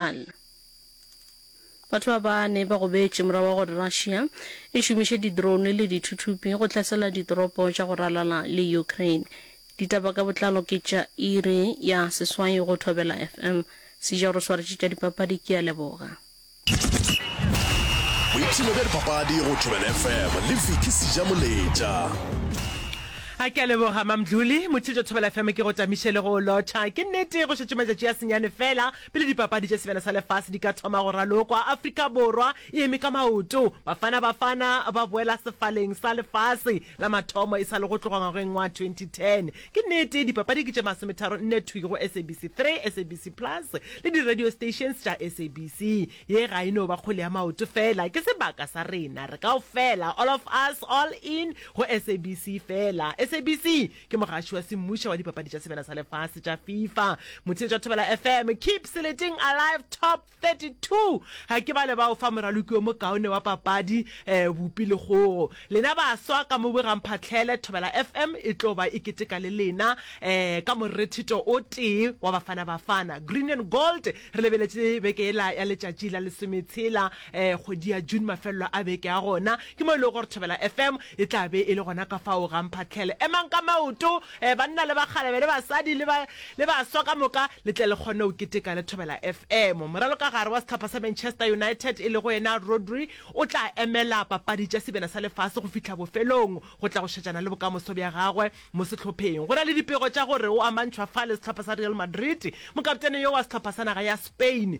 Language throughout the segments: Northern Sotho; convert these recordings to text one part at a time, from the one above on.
Iran. Batho ba bane ba gobetše morago ga gore Russia e šomiše di-drone le dithuthupi go hlasela ditoropo tša go ralala le Ukraine. Ditaba ka botlalo ke tša iri ya seswai go Thobela FM. Sejao re swaretše tša dipapadi, ke a leboga. Boipshino bja dipapadi go Thobela FM le Vicky Sejamoletša. A ke a leboga, Mamdluli. Motho jo Thobela FM ke go tamiše le go o lotšha. Ke nnete go šetše matšatši a senyane feela Pele Dipapadi tša Sebjana sa Lefase di ka thoma go ralokwa, Afrika Borwa e eme ka maoto. Bafana Bafana ba boela sefaleng sa lefase la mathomo e sa le go tloga ngwageng wa 2010. Ke nnete, dipapadi ke tše masometharo nne thwi go SABC 3, SABC Plus le di-radio stations tša SABC. Ye ga e no ba kgwele ya maoto feela, ke sebaka sa rena re kaofela, all of us, all in, go SABC feela. SABC Ke mogaši wa semmuša wa dipapadi tša sebele sa lefase tša FIFA, motheetši wa Thobela FM. Keep Seleting Alive Top 32. Ga ke bale ba o fa moraloki yo mokaone wa papadi, eh, bupi le kgogo. Lena baswa ka mo bogang phatlhele, Thobela FM e tlo ba e keteka le lena, eh, ka morethito o tee wa Bafana Bafana. Green and Gold re lebeletše beke ela ya letšatši la lesometshela um kgwedi ya june mafelelo a beke a gona ke mo e lego gore thobela fm e tla be e le gona ka fao ga mphatlhele emang ka maoto um banna le bakgalebe le basadi le baswa ka moka le tle le kgone go keteka le thobela fm moralo ka gare wa setlhopha sa manchester united e lego yena rodri o tla emela papadi tša sebena sa lefase go fihla bofelong go tla go šetšana le bokamoso bja gagwe mo setlhopheng go na le dipego tša gore o amantšhwa fa le setlhopha sa real madrid mokaptene yo wa setlhopha sa naga ya spain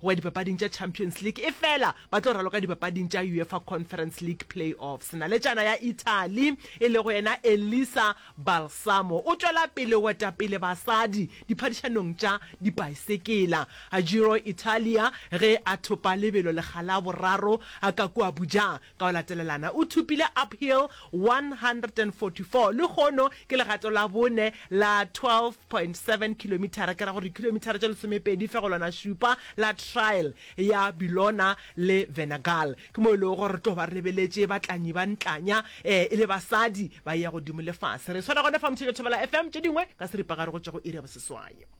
go ya dipapading tša Champions League efela ba tlo raloka dipapading tša Uefa Conference League Play-offs. Naletšana ya Italy e lego yena Elisa Balsamo o tšwela pele go eta pele basadi diphadišanong tša dipaesekela. Giro Italia ge a thopa lebelo lekga la boraro ka kua bojang Ka go latelelana o thopile uphill 144, lehono ke legato la bone la 12.7 kilomithara, ke ra gore dikilomithara tše lesomepedi fegelwana šupa, la trail ya Billona le Venagal. Ke mo e lego gore re tlo ba re lebeletše batlanyi ba ntlanya e le basadi ba ya godimo le fase. Re swela gona fa Mthebe Thobela FM, tše dingwe ka seripagare go tšwa go iri ya boseswai.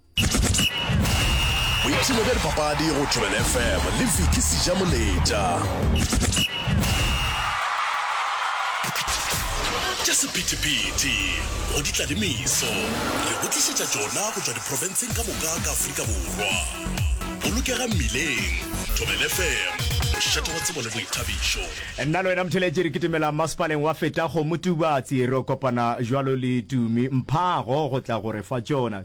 boipshino bja dipapadi go tšwebel fm le viki seja moletša tša sephetephete go di tlalemiso re go tlišetša tšona go tšwa diprofenseng ka moka ka aforika borwa bolokega mmileng tšwebel fm mošate wa tsebo le boithabišo nna le wena motheletše re kitimela masepaleng wa feta go motubatsi re kopana jalo le tumi mphago go tla gore fa tšona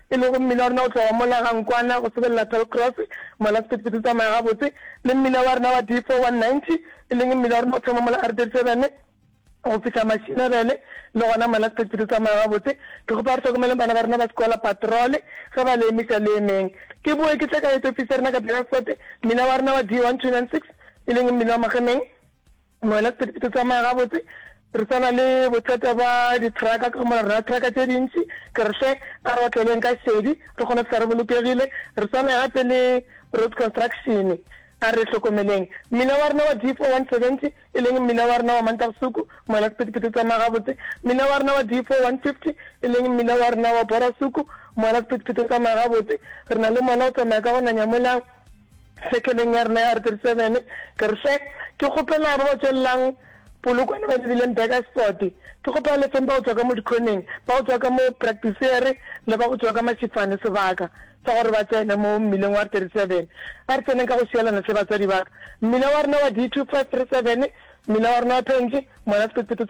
e lego mmila wa rena go tloga mola ga Nkwana go sebelela Toll Cross, mola sephethephethe se tsamaya gabotse, le mmila wa rena wa D490, e leng mmila wa rena go thoma mola R37 go fihla Mashinebele, le gona mola sephethephethe se tsamaya gabotse. Ke kgopa re hlokomeleng bana ba rena ba sekola patrole ge ba le emiša le emeng. Ke boe ke tle ka head office ya rena ka Beaufort, mmila wa rena wa D1296, e leng mmila wa Magemeng, Moena, Ke ke tsamaya gabotse, re tsana le bothata ba ditraka ka mora rena traka tše dintši, ke re hle a re otleleng ka šedi re kgone fihla re bolokegile, re tsamaye gape le road construction a re hlokomeleng mmila wa rena wa D4 170 e leng mmila wa rena wa Mantagosuku, Moena, Ke ke tsamaya gabotse, mmila wa rena wa D4 150 e leng mmila wa rena wa Borasuku, Moena, Ke ke tsamaya gabotse, re na le mola o tsamaya ka go nanya mola. Sekeleng ya rena ya R37, ke re hle, ke kgopela ba ba tšwelelang Polokwane ba lebileng Burgersport, ke kgopela le feng ba go tšwa ka mo dikhoneng, ba go tšwa ka mo Practicery le ba go tšwa ka Mashifane sebaka sa gore ba tsene mo mmileng wa R37. A re tseneng ka go šielana hle batswadi ba ka. Mmila wa rena wa D2537, mmila wa rena wa Phenje, Monasepetsepe,